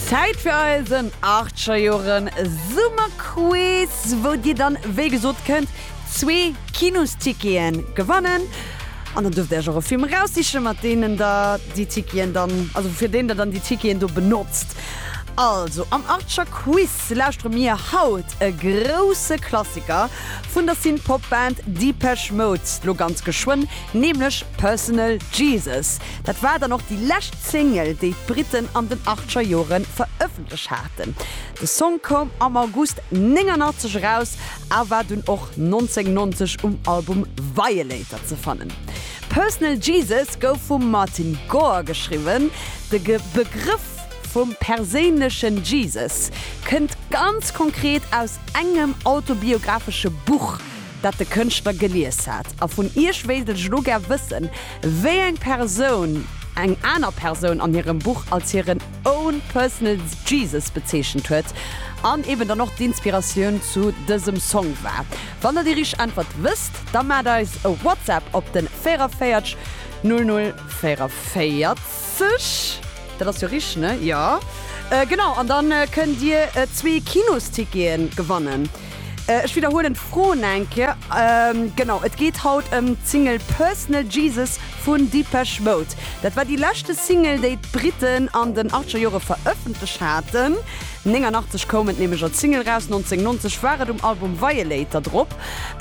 Zäit fir eisen Archer-Joren Summerquiz, wou dir dann, wéi gesot, kënnt zwee Kinostickete gewannen. An dann duerft Dir Iech och e Film eraussichen, mat deenen Der déi Ticketen dann, also fir deen Der dann déi Ticketen do benotzt. Also am Archer-Quiz lauschtere mir haut e grousse Klassiker vun der Synth-Pop-Band Depeche Mode, lo ganz geschwënn, nämlech Personal Jesus. Dat war dann och déi lescht Single, déi d'Britten an den achtscher Jore verëffentlech haten. De Song koum am August 89 eraus a war dunn och 1990 um Album Violator ze fannen. Personal Jesus gouf vum Martin Gore geschriwwen. De Begrëff vum perséinlechen Jesus kënnt ganz konkret aus engem autobiographesche Buch, dat de Kënschtler gelies hat. A vun Iech wéilt ech elo gär wëssen, Wéi eng Persoun eng aner Persoun an hirem Buch als hiren own personal Jesus bezeechent huet an eben dann och d'Inspiratioun zu dësem Song war. Wann der déi richteg Äntwert wësst, da maacht eis e WhatsApp op den 44 00 44. Dat ass jo richteg, ne? Jo genau. An dann kënnt dir zwee Kinosticketen gewannen. Ech widderhuelen d'Fro eng Kéier. Genau, et geet haut ëm d'Single Personal Jesus vun Depeche Mode. Dat war déi leschte Single, déi d'Britten an den achtscher Jore verëffentlech haten. 89 koum et nämlech als Single raus, 1990 war et um Album Violator drop.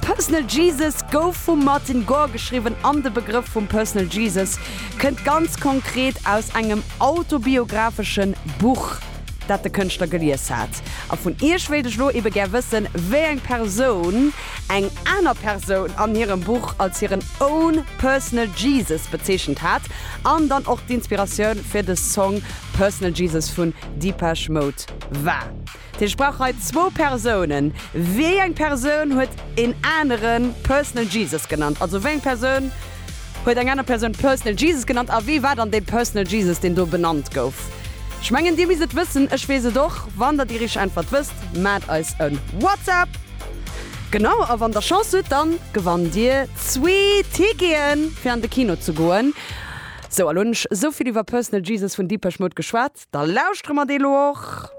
Personal Jesus gouf vum Martin Gore geschriwwen an de Begrëff vum Personal Jesus kënnt ganz konkret aus engem autobiographeschen Buch. dat de Kënschtler gelies hat. A vun Iech wéilt ech lo ebe gär wëssen, wéi eng Persoun eng aner Persoun an hirem Buch als hiren own personal Jesus bezeechent hat an dann och d'Inspiratioun fir de Song Personal Jesus vun Depeche Mode war. Ech brauch hei zwou Persounen. Wéi eng Persoun huet een anere Personal Jesus genannt? Also wéi eng Persoun Huet eng aner Persoun Personal Jesus genannt? A wee war dann dee Personal Jesus, deen do benannt gouf? Ech mengen, Dir misst et wëssen, ech weess et och. Wann Der déi richteg Äntwert wësst, maacht eis e WhatsApp. Genau, a wann Der Chance hutt, dann gewannt Dir zwee Ticketen, fir an de Kino ze goen. Sou, a lo hunn ech esou vill iwwer Personal Jesus vun Depeche Mode geschwat, da lauschtere mer dee lo och.